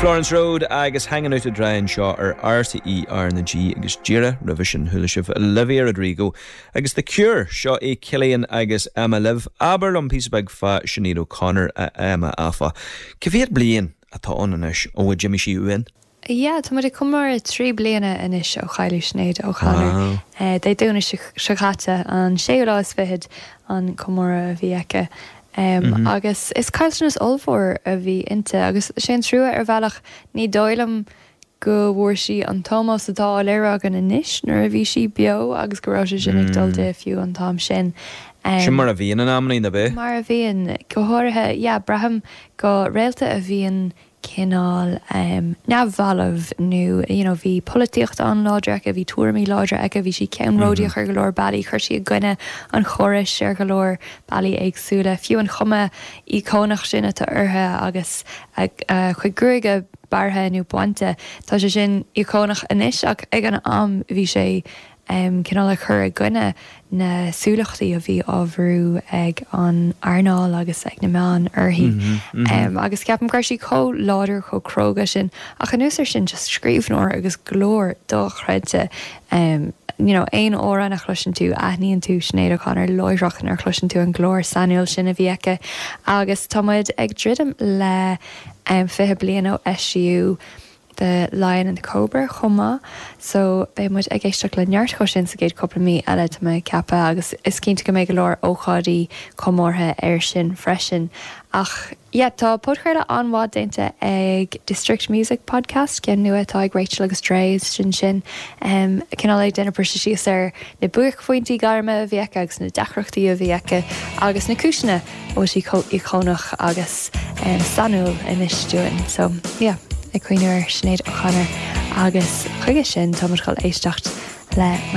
Florence Road agus Hanging Out to Dry anseo ar RTÉ RnaG agus díreach roimhe sin chuala sibh Olivia Rodrigo agus The Cure! Seo é Cillian agus Emma libh. Abair liom píosa beag fá Sinéad O'Connor, a Emma, áfach. Cá mhéad bliain atá ann anois ón uair a d'imigh sí uainn? A yeah, tá muid ag comóradh trí bliana anois ó chailleadh Sinéad O'Connor. Dé Domhnaigh seo chaite, an séú lá is fichead, an comóradh a bhí aici. Agus is caillteanas ollmhór a bhí inti, agus sé an trua ar bhealach, ní dóigh liom go bhfuair sí an t-ómós atá á léiriú againn anois nuair a bhí sí beo agus go raibh sé sin ag dul di fiú an t-am sin. Sin mar a bhíonn in amannaí, nach mbíonn? Mar a bhíonn, go háirithe, yeah, braithim, do réalta a bhíonn cineál neamhbhalbh nó you know bhí polaitíocht an-láidir aici, bhí tuairimí láidre aici, bhí sí ceannródaíoch ar go leor bealaí, chuir sí i gcoinne an chórais ar go leor bealaí éagsúla, fiú an chuma íocónach sin atá uirthi agus a cuid gruaige bearrtha nó bainte, tá sé sin íocónach anois ach ag an am bhí sé um cineál ag cur i gcoinne na súlachtaí a bhí á bhrú ag an earnáil agus ag na meáin uirthi. um agus ceapaim go raibh sí chomh láidir, chomh cróga sin ach anuas ar sin just scríbhneoir agus glór dochreidte. um you know aon amhrán a chloiseann tú, aithníonn tú Sinéad O'Connor láithreach nuair a chloiseann tú an glór sainiúil sin a bhí aici agus tá muid ag druidim le um fiche bliain ó eisíodh The Lion and the Cobra chomh maith, so beidh muid ag éisteacht le neart dhó sin sa gcéad cupla mí eile, tá mé ag ceapadh, agus is cinnte go mbeidh go leor ócáidí comórtha air sin freisin. Ach, yeah, tá podchraoladh an-mhaith déanta ag District Music Podcast, ceann nua atá ag Rachel agus Dray, sin sin, cineál ag déanamh briseadh síos ar na buaicphointí gairme a bhí aici agus na deacrachtaí a bhí aici agus na cúiseanna, a bhfuil sí chomh íocónach agus sainiúil anois dúinn. So, yeah, ag cuimhneamh ar Sinéad O'Connor agus chuige sin, tá muid chun éisteacht le.